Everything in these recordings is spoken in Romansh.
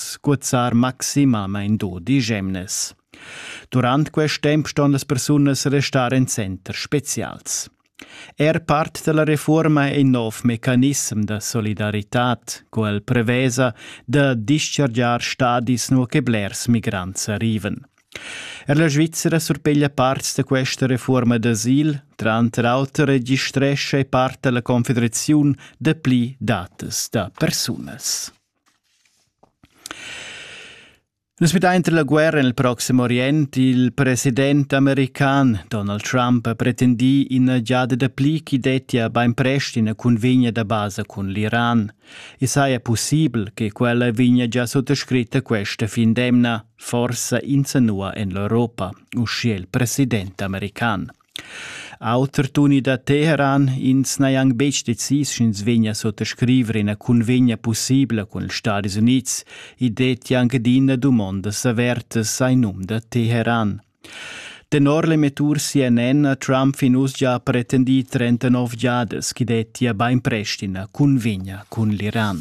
scuzzar maximamein dodi gemnes. Durant quest temp ston las persunas restar en center specials. Er part della reforma è in nov mecanism da solidaritat, quel prevesa da dischargiar stadis nur che blers migrants arriven. Er la Svizzera surpeglia parts da questa reforma d'asil, tranter auter registresce part della confederaziun de pli datas da persunas. Nus midain tar la guerra en il Proxim Orient. Il president american Donald Trump ha pretendì ina giada dapli ch'i dettia bainprest ina cunvegna da basa cun l'Iran. I saja pussibel che quella vegnia già suttascritta questa fin d'emna, forsa insanua en l'Europa, uschia il president american. Auter tuni da Teheran ins n'hai anc betg decis sch'ins vegnia suttascriver ina cunvegna pussibla cun ils Stadis Unids. I dettia anc adina dumondas avertas ai num da Teheran. Tenor l'emettur CNN ha Trump fin uss gia pretendì 39 giadas ch'i dettia bainprest ina cunvegna cun l'Iran.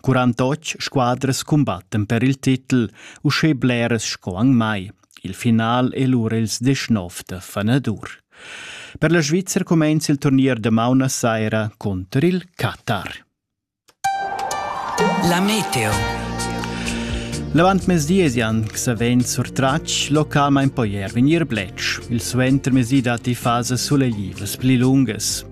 48 squadras cumbattan per il titel, uschè bleras sco anc mai. Il final è lura ils 19 da Fanadur. Per la Svizzera cumenza il turnier da maun a saira contro il Qatar. La meteo. L'avantmezdi esian savent surtratg localmain poier vegnir bletsch. Il suentermezdi datti fasas suleglivas pli lungas.